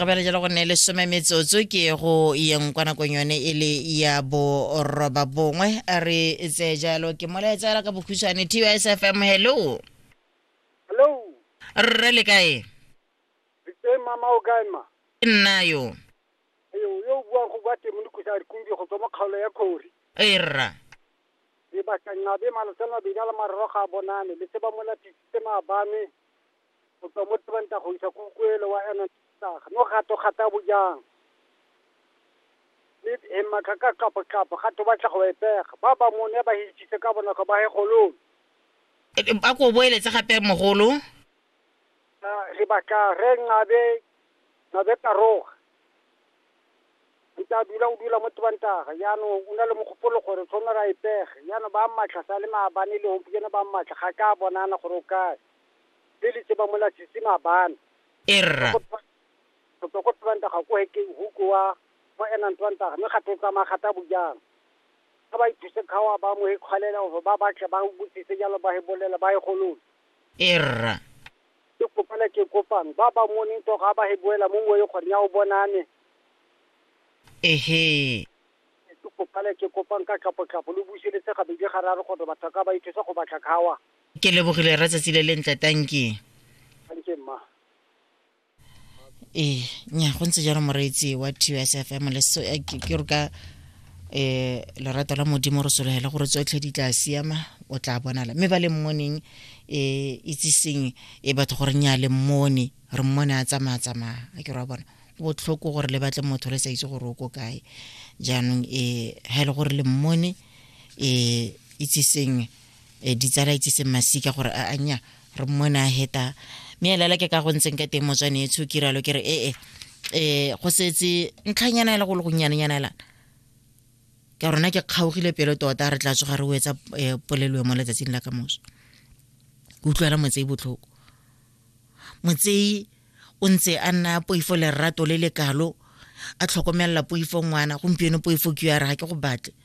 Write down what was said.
re bela jalo go nne le some metsotso ke go yeng kwa nakong yone e le ya boroba bongwe re tseye jalo ke molaetsa fela ka bokhutshwane tys fm hello hello rre le kae re tse mama o kae ma ke nna yo yo yo o buang go bua temo le kusa re kumbi go tswa mo kgaolo ya khori ee rra e batlangabe malosela mabedi a le mararo ga a bonane le se ba mola tisitse maabane go tswa mo tebanta go isa kukuelo wa ena tsaga no gato gata bojang le e matla ka kapo kapo gato ba tla go epega ba ba mone ba hitshitse ka bonako ba he golong a ko boeletse gape mogolo re batla re nqabe nqabe taroga nta dula o dula mo tebantaga jaanong o na le mogopolo gore tshwane ra epege jaanong ba mmatlha sa le maabane le gompieno ba mmatlha ga ka bonana gore o kae le le tseba mola sisi mabana. Erra. Go tswa ko Twantaga ko hekeng huko wa mo enang Twantaga mme gape o tsamaya gata bojang. Ga ba ithuse kgawa ba mo ikgwalela gore ba batle ba botsise jalo ba e bolela ba e golole. Erra. Ke kopela ke kopang ba ba moneng to ga ba e boela mo moe gore nya o bonane. Ehe. Ke kopela ke kopang ka tlhapo tlhapo lo buseletse gabedi gararo gore batho ka ba ithuse go batla kgawa. ke lebogile ra tsatsi le lentle tanki ee nya go ntse jalo moreetsi wa tsfm eh, ke re ka um lerato la modimo re solegela gore tsotlhe di tla siama o tla bonala mme ba le mmoneng um itseseng e batho gore nya le mmone re mmone a tsamaya tsamaya a ke re wa bona botlhoko gore le batle motho le sa itse gore o ko kae jaanong um ga e le gore le mmone um itseseng um ditsala itse se masika gore a anya re mmone a heta mme elela ke ka go ntseng ka teng motswane e tsho kiralo ke re ee um go setse ntlhanyana ela go le gonnyanenyana elana ka rona ke kgaogile pelo tota re tla tsoga re o etsa um polelo mo letsatsing la ka moso ke utlwela motsei botlhoko motsei o ntse a nna poifo lerato le le kalo a tlhokomelela poifo ngwana gompieno poifo ke ya re ga ke go batle